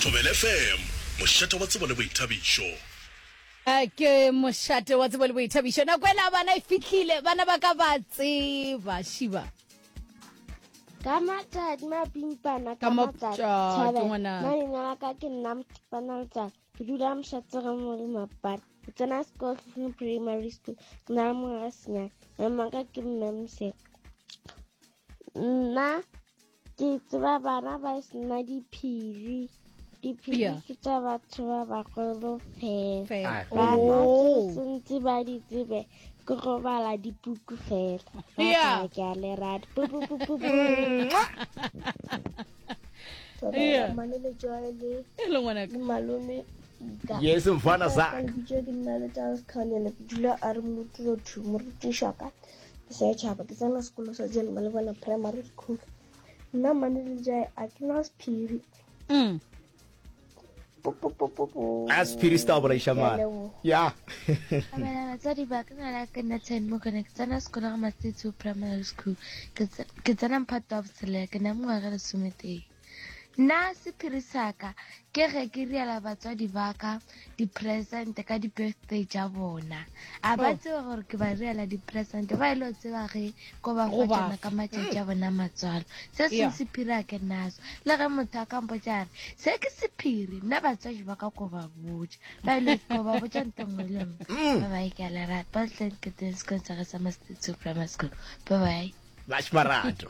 Thobela FM, mošate wa tsebo le boithabišo. A ke mošate wa tsebo le boithabišo nako e la bana e fihlile bana ba ka ba tseba šiba ka matšatši mapimpana ka matšatši thabela nna leina la ka ke nna motipana letsatsi ke dula mošatsere mo le mapata ke tsena sekolo tlhotlhong primary school ke na le mongwe ga senyana mmaka ke mme moseka nna ke tseba bana ba e sena diphiri diphiri yeah. ke tsa batho ba bagolo fela ah. bana ke oh. sentse ba di tsebe ke go bala dipuku fela yeah. ke a le rata yes mfana zak ke nna le charles kganyana ke dula a re motlothimo re tišaka setšhaba ke tsena sekolo sa jale ba le bona primary school nna mane le jae a ke na sephiri mm. a sephiri se ta bolaiša mane ya abela batsadi ba ka ngwana ke nna ten mo kone ke tsena sekolo ga matsitsi primary school ke tsena mphato wa botshelela ke na mengwaga lesometee Na sephiri sa ka ke ge ke riela batswadi ba ka dipresente ka di-birthday tša bona a ba oh. tseba gore ke ba riela dipresente ba e le o tseba ge ko ba fa tsona ka matšatši a bona matswalo se seng sephiri a ke naso le ge motho a kampo tša re se ke sephiri nna batswadi ba ka ko ba botša ba e le ko ba botša nto nngwe le nngwe mm. ba bae ke a lerata ba tlanketeng sekolong sa ge sa mastatio primary school ba bae Bash Marato.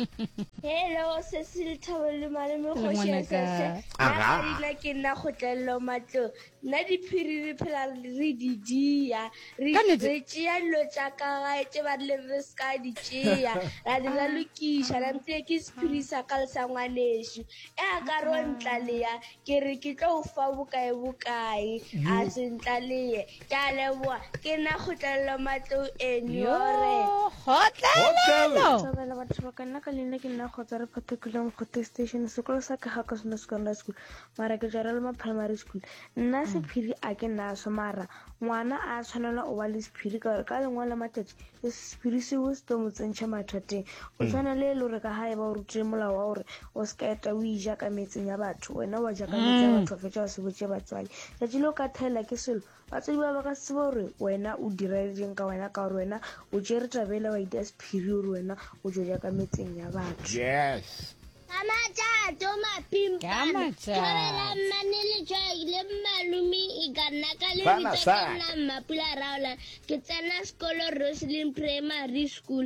Hello, Cecil Thawelu Malome Khoshesese. Aha. Rina ke nna go tlello matlo. Nna di phiri re phela re di dia. Re re tšea lo tša ka ga tše ba le re ska di tšea. Ra di ra lokisha ra ntse ke sephiri sa ka le sa ngwanešu. E a ka ro ntla le ya ke re ke tlo fa bokae bokae a se ntla le ye. Ke a leboa. Ke na kgotlelelo matlou enu. Yo, kgotlelelo! Thabela batho ba ka nna ka leina ke nna kgotsa re phathekile mokgothe station sekolo sa ka ga ka sone secondary school mara ke jara le ma primary school nna mm. sephiri a ke nna so mara ngwana a tshwanela o ba le sephiri ka gore ka lengwe la matšatši sephiri seo se tlo mo tsentšha mathateng o mm. tshwana le e le gore ka ga e ba o rutile molao wa gore O se ka eta o ija ka metseng ya batho, wena wa ja ka metse ya mm. batho wa fetša wa se botše batswadi. Tšatši le o ka thaela ke selo, batswadi ba ba ka tseba gore wena o direletseng ka wena ka gore wena o tšere tabela wa ita sephiri gore wena o jo ja ka metseng ya batho. Yes. Amajato mapimpana thobela mmane letswai le mmalumi e ka nna ka lebitsa ka nna mmapula raola ke tsena sekolo roselin primary school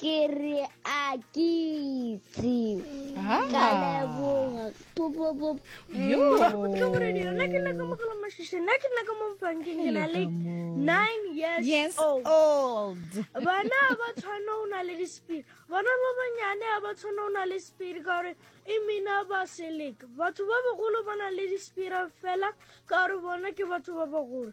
ke re a ke itse ka leboga yo yes old bana a ba tshwane o na le dispiri bana ba banyane a ba tshwane o na le spiri ka gore e mina ba seleka batho ba bagolo ba na le dispira fela ka gore bona ke batho ba bagolo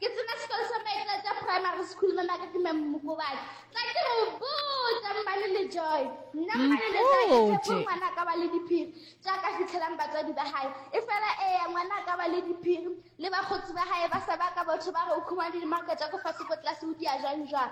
Ke tsena sekolo sa Maitlatša Primary School mo maka ke Mme Mmokobane. Tla ke go botsa mmane le Joy. Nna mmane le Joy ke tshepo ngwana ka ba le diphiri tša ka fitlhelang batswadi ba gae. E fela eya ngwana ka ba le diphiri le bakgotsi ba gae ba sa ba ka botho ba re o khumane le makatša ko fase ko tlase o dia jwang jwang.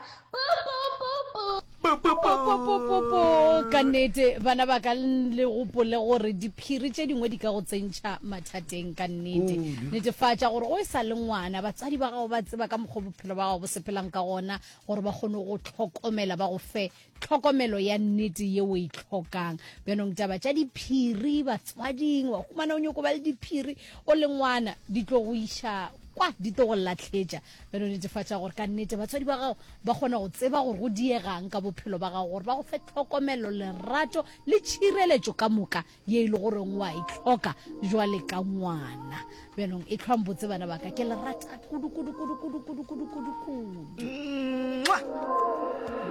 Popopopopopo! Ka nnete, bana ba ka, le gopole gore diphiri tše dingwe di ka go tsentšha mathateng. Ka nnete, Kudu. netefatša gore o e sa le ngwana, batswadi ba gago ba tseba ka mokgwa o bophelo ba gago bo sepelang ka gona gore ba kgone go tlhokomela, ba go fe tlhokomelo ya nnete ye o e hlokang. Bjanong taba tša diphiri batswading, wa humana o nyoko ba le diphiri o le ngwana, di tlo go iša kwa, di tlo go lahletša. e no netefatša gore ka nnete batswadi ba gago ba kgona go tseba gore go diegang ka bophelo ba gago gore ba go fe tlhokomelo lerato le tšhireletšo ka moka ye e le goreng wa e tlhoka jwale ka ngwana bjanong e tlhwang botse bana baka ke lerata kudu kudu kudu kudu kudu kudu kudu kudu